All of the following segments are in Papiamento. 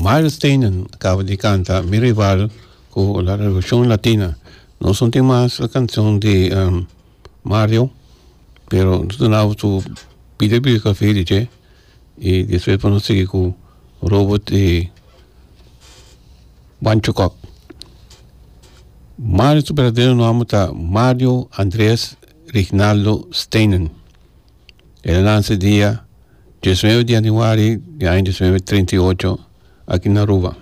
Miles Teenen a kaba di kanta Mi Rival ku La Revolucion Latina. Nos no tin mas e kanshon di Mario pero nos ta nau su pide biografia di dje i despues por nos sigui ku Robert i Pancho Kok. Mario su berdadero nomber ta Mario Andres Rignaldo Steenen. E nananse dia diesnuebe di januari di aña diesnuebe treinta i ocho aki na Aruba.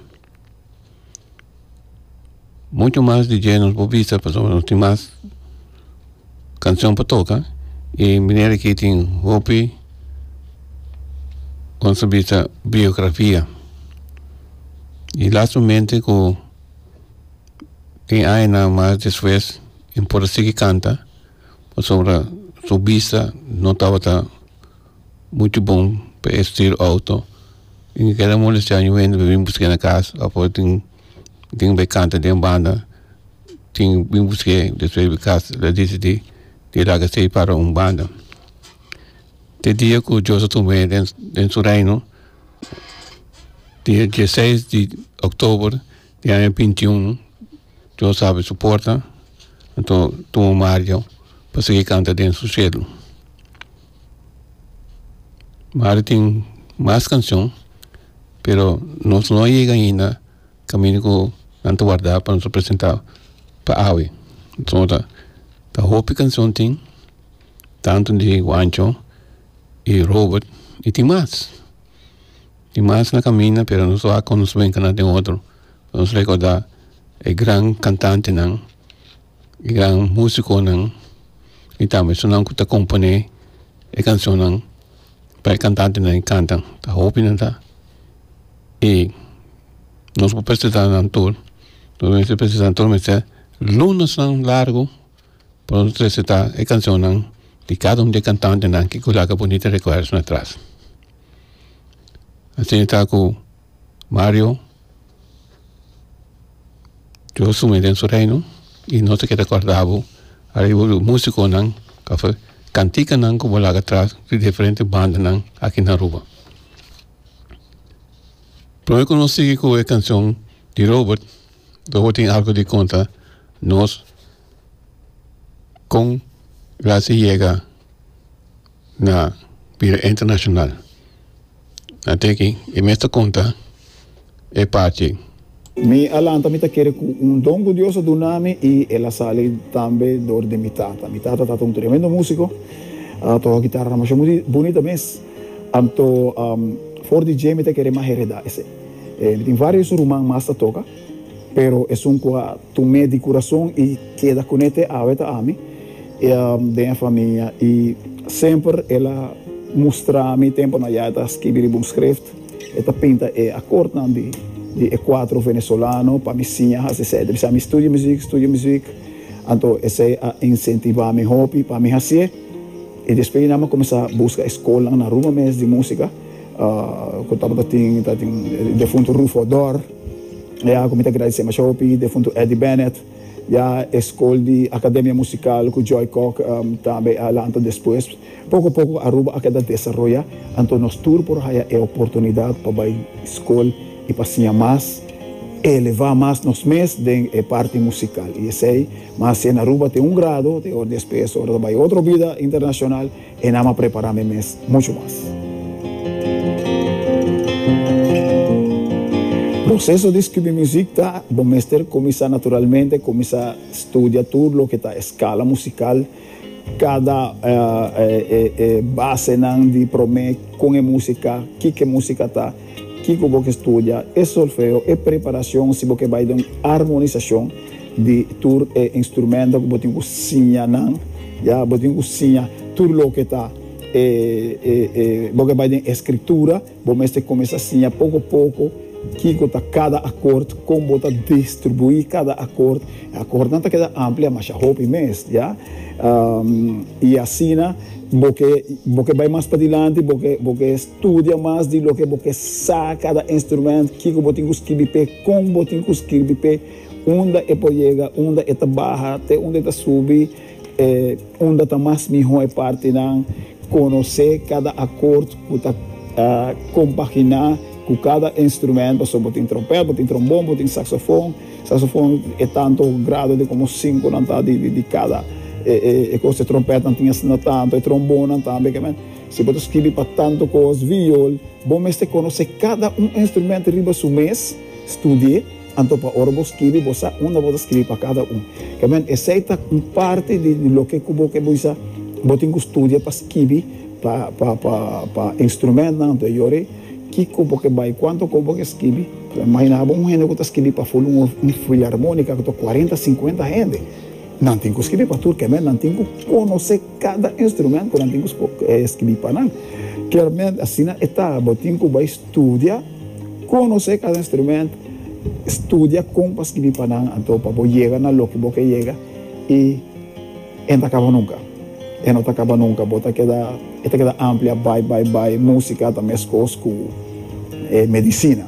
Muchu mas di dje nos por bisa pasobra nos tin mas kanshoñ pa toka y meneer aki tin hopi con su bisa biografia y lastimamente cu tin añanan mas despues y por a sigui canta pasobra su bista no tabata mucho bon pa e stuur auto y mi keda molestia aña wende pa bin busqué na cas afuer tin tin be canta den banda tin bin busqué despues di cas lo a decidi di laga stay para un banda te dia cu dios a tuma me den su reino dia dieciseis di october Di aña binti un Dios habri su porta anto tuma Mario pa sigui canta den su cielo Mario tin mas cancion pero nos no a yega ainda caminda cu nan ta warda pa nos presenta pa awe so ta ta hopi cancion tin tanto di Juancho y Robert y tin mas. Tin mas na caminda pero nos lo hac con nos brinca na den otro lo nos recorda e gran cantantenan e gran musiconan y tambe esunnan cu ta compone e cancionnan pa e cantantenan e canta ta hopi nan ta y nos por presentanan tur nos mester presenta tur mester lunasnan largo por nos resitá e cancionnan di cada un di e cantantenan ki cu laga bunita recuerdonan atras. Asina ta cu Mario, Dios sumi den su reino y nos ta keda corda bo ariba bo musiconan pasobra canticanan cu bo laga atras di diferente bandanan aki na Aruba. Prome cu nos sigui cu e cancion di Robert Lo bo tin algo di contra nos con gracia yega na bira internacional a tin aki y mes ta conta e parti. Mi a lanta mi ta kere cu un don cu Dios a duna mi y el a sali tambe door di mi tata. Mi tata tata un tremendo musico, a toca guitarra damasia bunita mes, anto for di dje mi ta kere mas hereda esey. Mi tin varios ruman mas ta toca, pero esun cu a tum'é di curason y keda cun'é te awe ta ami den e famia y semper el a mustra mi tempo nan ya e ta skibi riba un schrift, e ta pinta e acordnan di e cuatro Venezolano pa mi siña haci esey. Ta bisa mi studia muziek, studia muziek, anto esey a incentiva mi hopi pa mi haci'é y despues di nan mi a cuminsa busca e scolnan na Aruba mes di musica. ku tabatin tatin e defuntu Rufo Odor ya ku mi ta gradisé mashá hopi e defuntu Eddie Bennett ya e skol di Akademia Musikal ku Joy Kok tambe a lanta despues poko poko Aruba a keda desaroya anto nos tur por haya e oportunidat pa bai skol i pa siña mas elevá mas nos mes den e parti musikal i esei mas si e na Aruba tin un grado despues ora ta bai otro bida internashonal. E nam a prepará me mes muchu mas. Proseso di skibi muzik ta, Bo mester kuminsá naturalmente, kuminsá studia tur loke ta e skala musikal, kada e basenan di promé, kon e músika, kiko e músika ta. Kiko bo ke studia? E solfeo, e preparashon si bo ke bai den un armonisashon di tur e instrumento ku bo tin ku siña nan, ya. Bo tin ku siña tur loke ta e e bo ke bai den e skritura, bo mester kuminsá siña poko a poko kiko ta kada akort, kon bo ta distribuí kada akort. E akortnan ta keda amplia masha hopi mes, ya. I asina bo ke bo ke bai mas padilanti bo ke bo ke. Studia mas di loke bo ke sa kada instrumento, kiko bo tin ku skirbi p'e, kon bo tin ku skirbi p'e, unda e por yega, unda e ta baha, te unda e ta subi, unda ta mas mihó e partinan, konosé kada akort ku ta kompaginá ku kada instrumento, pasobra bo tin trompet, bo tin trombon, bo tin saksofon, saksofon e tantu grado di komo sinkonan ta di kada e kos, e trompetnan tin asina tantu, e trombonnan tambe. Si bo ta skibi pa tantu kos viol, bo mester konosé kada un instrumento riba su mes, studi'é, anto pa ora bo skibi bo sa unda bo ta skibi pa kada un. Kementi esei ta un parti di loke ku bo ke bisa bo tin ku studia pa skibi pa pa instrumentunan, anto e yore kiko bo ke bai, kuantu kos bo ke skibi. Imaginá bo un hende ku ta skibi pa ful un filarmónika ku ta kuarenta, sinkuenta hende. Nan tin ku skibi pa tur, kementi nan tin ku konosé. Kada instrumento nan tin ku skibi pa nan. Klarmente asina e ta. Bo tin ku bai studia, konosé kada instrumento, studia kon pa skibi pa nan anto pa bo yega na loke bo ke yega i e no ta kaba nunka. E no ta kaba nunka. Bo ta keda, e ta keda amplia bai, bai, bai. Músika ta meskos ku medisina.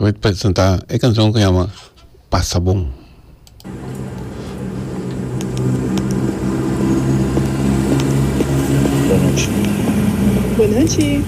Mei presenta e cancion cu yama Pasa bon. Bonochi. Bonochi.